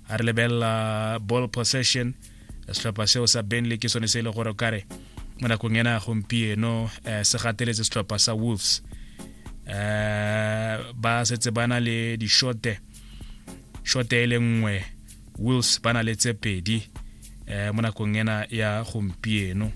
a re lebelela ball possession setlhopha seo sa benley ke sone se e le gore kare mo nakong ena gompieno um se gateletse setlhopha sa wolves um ba setse ba na le dishote shote e le nngwe wolves ba na le tse pedi eh, mo nakong ena ya gompieno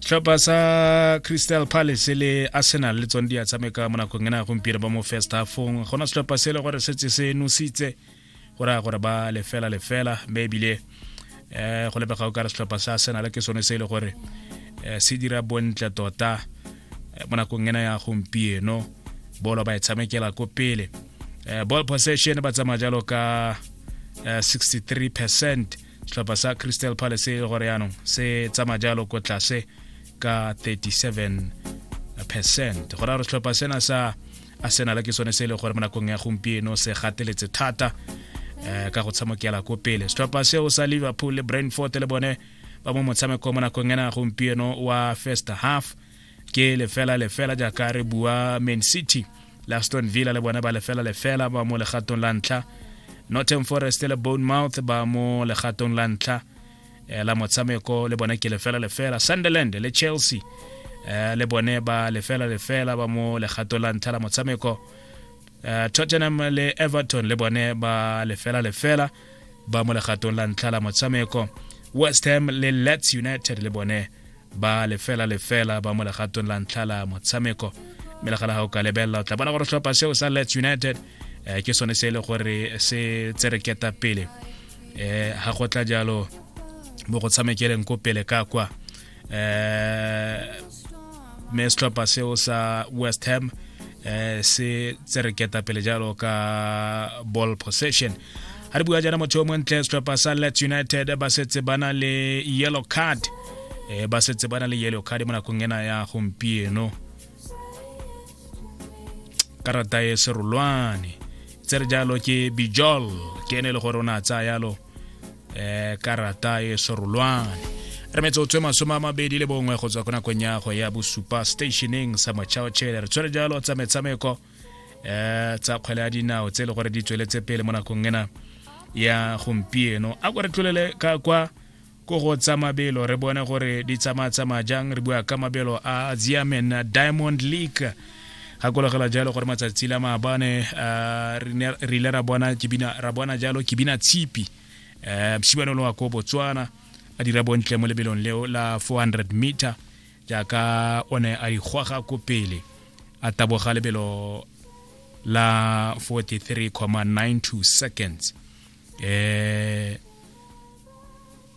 tlhopha sa crystal palace le arsenal le tsone di a tshameka mo nakong ena gompieno ba mo first halfong gona setlhopha se e le gore setse se nositse go raya gore ba lefela lefela mme ebile um go lebega o ka re setlhopha sa arsenal ke sone se e le gore um se dira bontle tota mo nakong ena ya gompieno bolo ba e tshamekela ko pele Eh, ball possession ba tsamaya jalo ka 63 eh, percent setlhopha sa crystal palace e gore yaanong se tsamaya jalo ko tlase ka 37 percent go ra gore setlhopha sena sa arsenal ke sone se e le gore mo nakong ya gompieno se gateletse thata um ka go tshamokela ko pele setlhopha seo sa liverpool le brandford le bone ba mo motshameko mo nakong ena gompieno wa first half ke lefela lefela jaaka re bua main city le aston villa le bone ba lefela lefela ba mo legatong la ntlha northern forest le bonemouth ba mo legatong la ntlha eh, la motshameko le bone ke lefela lefela sunderland le chelsea eh, le bone ba lefela lefela ba mo legato la ntlha la motshameko eh, tottenham le everton le bone ba lefela lefela ba mo legatong la ntlha la motshameko west ham le lets united le bone ba lefela lefela ba mo legatong la ntlha la motshameko mme le gana ga o ka lebelela o tla bona gore tlhopha seo sa lets united eh, ke sone se e le gore se tsereketa pele eh ha go tla jalo mo go tshamekeleng ko pele ka kwa eh me setlhopha seo sa west ham eh se tsereketa pele jalo ka ball possession ha re bua jana motho o montle setlhopha sa let united ba setse ba na le yellow card eh ba setse ba na le yellow card mo nakong ena ya gompieno karata e serolwane tse re jalo ke bijol ke ene e le gore o ne a tsaya yalo um karata e serolwane re metsotswe masome a mabedi le bongwe go tswa ko nakong ya go ya bosupa stationeng sa mochaotšhele re tshwere jalo tsa metshameko um tsa kgwele ya dinao tse e le gore di tsweletse pele mo nakong ena ya gompieno a ko re tlolele ka kwa ko go tsa mabelo re bone gore di tsamaya-tsamaya jang re bua ka mabelo a ziamen diamond league gakologela jalo gore matsatsi la maabane uh, re ile ra bona kibina ra bona jalo kibina tshipi um mshibane lo wa ko botswana a dira bontle mo lebelong leo la 400 meter jaaka o ne a ikgwaga ko pele a taboga lebelo la 43,92 seconds eh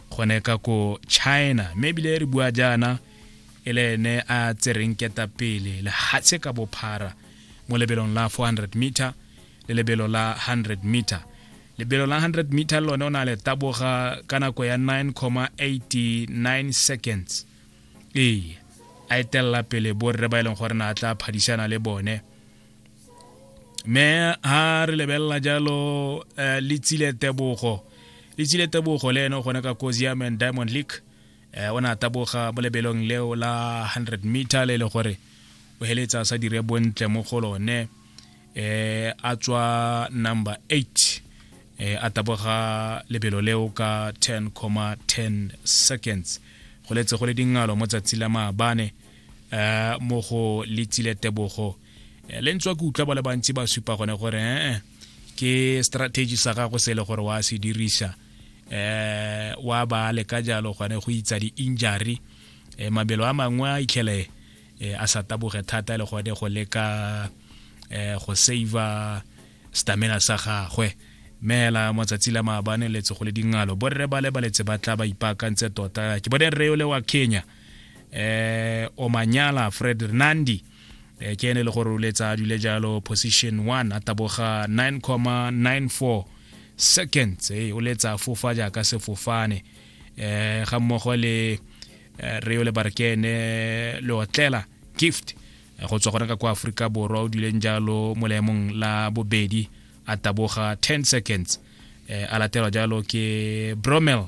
gone ka ko china mme ebile re bua jaana e le ene a tsereng ketapele lehatshe ka bophara mo lebelong la 400 meter le lebelo la 100 meter lebelo la 100 meter le lone o na le taboga ka nako ya 9,89 seconds ee a etelela pele borre ba e leng gore na a tla phadisana le bone me ha re lebelela jalo uh, le tsile tebogo le tsile tebogo le ene o gone ka cosium and diamond league eh, o ne a taboga mo lebelong leo la 100 meter le e le gore o heletsa sa dire bontle mo go lone eh, a tswa number 8 eh, a taboga lebelo leo ka 10,10 seconds go letse go le dingalo mo tsatsi la maabane eh mo go letsile tebogo eh, le ntswa ke utlwa ba le bantsi ba supa gone gore ee eh, ke strategy sa gago se le gore wa se dirisa eh wa ba le ka jalo gone go itsa di injury eh, mabelo a mangwe a itlhele eh, a sa taboge thata le gone go leka eh, go saver stamina sa gagwe meela matsatsi la maabane letse go le dingalo borre ba le baletse ba tla ba ipaakantse tota ke bone rre yo le wa kenya eh omanyala fred renandi eh, ke ene le gore o letsa a dule jalo position 1 a taboga 9,94 seconds eh, o letsa a fofa jaaka sefofane eh ga mmogo le eh, reo le barkene le otlela gift eh, go tswa gone ka kwa aforika borwa o duleng jalo mo leemong la bobedi a taboga 10 seconds eh, a latelwa jalo ke bromel